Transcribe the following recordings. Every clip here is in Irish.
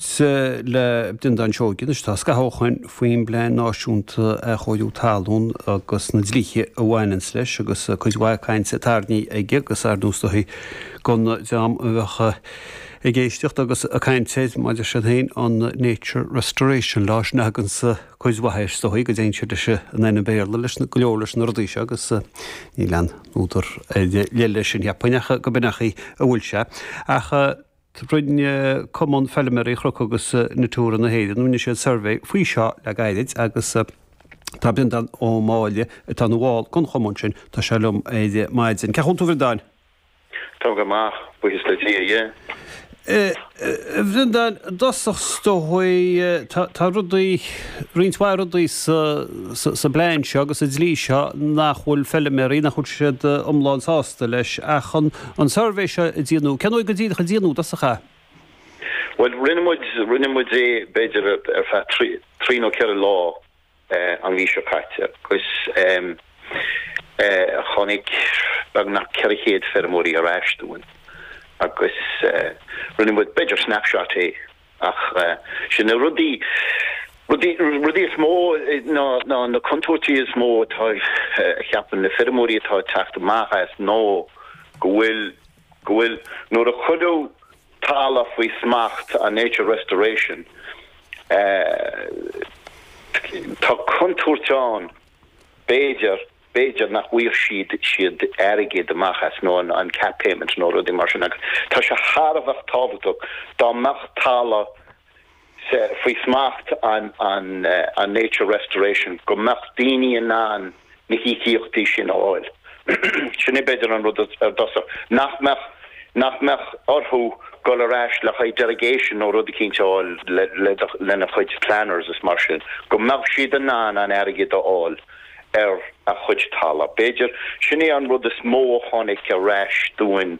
Sea, le Breandán Seoige anois, tá scaitheamh cainte faoin bPlean Náisiúnta Athchóirithe Talún agus na dlíthe a bhaineanns leis agus cuid mhaith cainte tarraingthe aige agus ar ndóigh is dóigh gan an dream a bheadh ag éisteacht agus ag caint air, maidir sin féin, an Nature Restoration Law, sin a thuganns cuid mhaith air, is dóigh, go dtéann sé leis an ainm Béarla leis go leor leis na rudaí seo agus níl aon údar ar leith leis sin, cheapfainn, ach gurb in mar atá sé. Ach. Rinne Cumann Feilméaraí Chnoc agus Natura na hÉireann, rinne siad suirbhé faoi seo le gairid agus tá Breandán Ó Máille, atá ina bhall den chumann sin, tá sé liom ar maidin. Cén chaoi a bhfuil tú, a Bhreandáin. Tá go maith, buíochas le Dia, aye. A Bhreandáin, i dtosach 's dóigh, tá rudaí, roinnt mhaith rudaí sa bplean seo agus sa dlí seo nach bhfuil feilméaraí, nach bhfuil siad iomlán sásta leis ach an, an suirbhé seo a déanadh. Cén uair go díreach a déanadh i dtosach é? Bhuel, rinne muid, rinne muid é b'fhéidir ar feadh trí, trí nó ceithre lá an mhí seo caite agus tháinig beagnach ceithre chéad feirmeoirí ar ais dúinn agus rinne muid b'fhéidir snapshot é. Ach sin na rudaí, rudaí, rudaí is mó ná, ná na contúirtí is mó atá, a cheapann na feirmeoirí atá ag teacht amach as ná go bhfuil, go bhfuil, nuair a cuireadh talamh faoi smacht an Nature Restoration eh, tá contúirt ann b'fhéidir, b'fhéidir nach bhfaigheadh siad siad airgead amach as nó an an CAP payment nó rudaí mar sin agus tá sé thar a bheith tábhachtach dá mbeadh talamh faoi smacht an an an nature restoration go mbeadh daoine in ann na híocaíochtaí sin a fháil. Sin é b'fhéidir an rud ar dtosach nach mbeadh nach mbeadh orthu dhul ar ais le haghaidh derogation nó rud eicínt a fháil le le lena gcuid planners is mar sin go mbeadh siad in ann an airgead a fháil. ar a gcuid talaimh. B'fhéidir, sin é an rud is mó a tháinig ar ais dúinn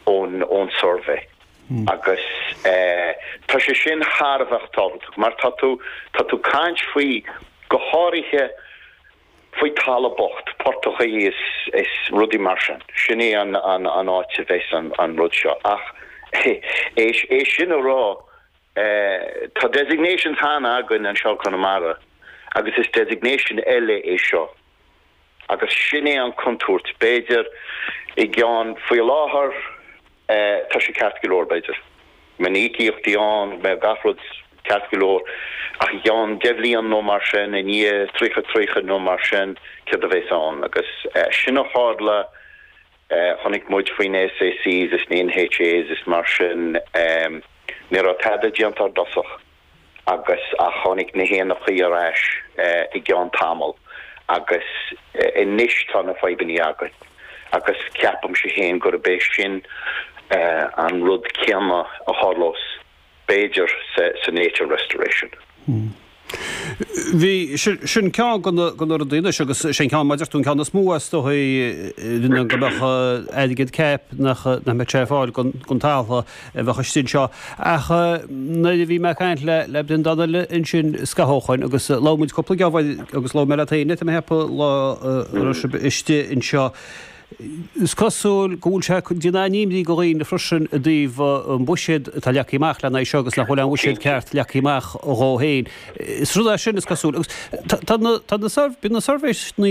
ón suirbhé. Agus tá sé sin thar a bheith tábhachtach mar tá tú ag caint faoi, go háirithe, faoi talamh bocht, portachaí is rudaí mar sin. Sin é an áit a bheas an rud seo. Ach é sin a rá, é. Tá designations cheana againn anseo i gConamara agus is designation eile é seo agus sin é an contúirt, b'fhéidir, i gceann, faoi láthair tá sé ceart go leor, b'fhéidir go mbeidh na íocaíochtaí ann, go mbeidh gach rud ceart go leor ach i gceann deich mbliana nó mar sin, i ndiaidh tríocha, tríocha nó mar sin, céard a bheas ann agus sin é a tharla. Tháinig muid faoi na SACs is na NHAs is mar sin, ní raibh tada déanta ar dtosach agus tháinig na héanachaí ar ais i gceann tamaill agus anois tá na fadhbannaí againn agus ceapaimse féin gurb é sin an rud céanna a tharlós. b'fhéidir, sa Nature Restoration. Hm. Bhí. Sin ceann de na rudaí anois agus sé an ceann, mar a deir tú, an ceann is mó is dóigh, go mbeadh airgead CAP, nach mbeadh sé ar fáil don talamh a bheadh istigh anseo. Ach nuair a bhí mé ag caint leat, a Bhreandáin, ansin, Scathócháin, agus labhair muid cúpla geábh agus labhair mé leat féin, tá mé ag ceapadh, lá a raibh sibh istigh anseo, Is cosúil go bhfuil sé ag déanamh imní do dhaoine freisin i dtaobh an buiséad atá leagtha amach le haghaidh seo agus nach bhfuil an buiséad ceart leagtha amach dhó féin. Is rud é sin, is cosúil, agus tá na, bíonn na suirbhéanna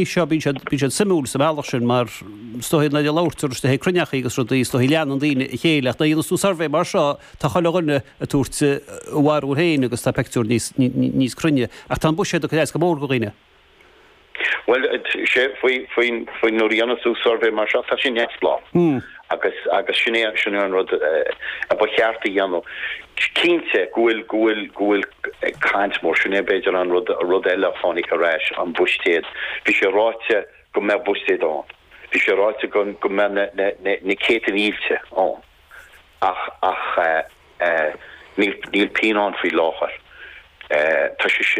seo, bíonn siad, bíonn siad suimiúil sa mbealach sin mar is dóigh nuair a labhairtear ag cruinneachaí agus rudaí, is dóigh leanann daoine a chéile ach nuair a dhéanas tú suirbhé mar seo tá chuile dhuine ag tabhairt a bharúil féin agus tá pictiúr níos, níos cruinne ach tá an buiséad ag cur as go mór do dhaoine. Bhuel, sé, faoi, faoin, faoin, nuair a dhéanann tú suirbhé mar seo, tá sé neamhspleách. Agus, agus sin é, sin é an rud a ba cheart a dhéanamh. Cinnte go bhfuil, go bhfuil, go bhfuil caint mhór, sin é b'fhéidir an rud, rud eile a tháinig ar ais, an buiséad. Bhí sé ráite go mbeadh buiséad ann. Bhí sé ráite go, go mbeadh na, na, na, na céadta mílte ann. Ach, ach eh, eh, níl, níl pingin ann faoi láthair. Eh, tá sé sin.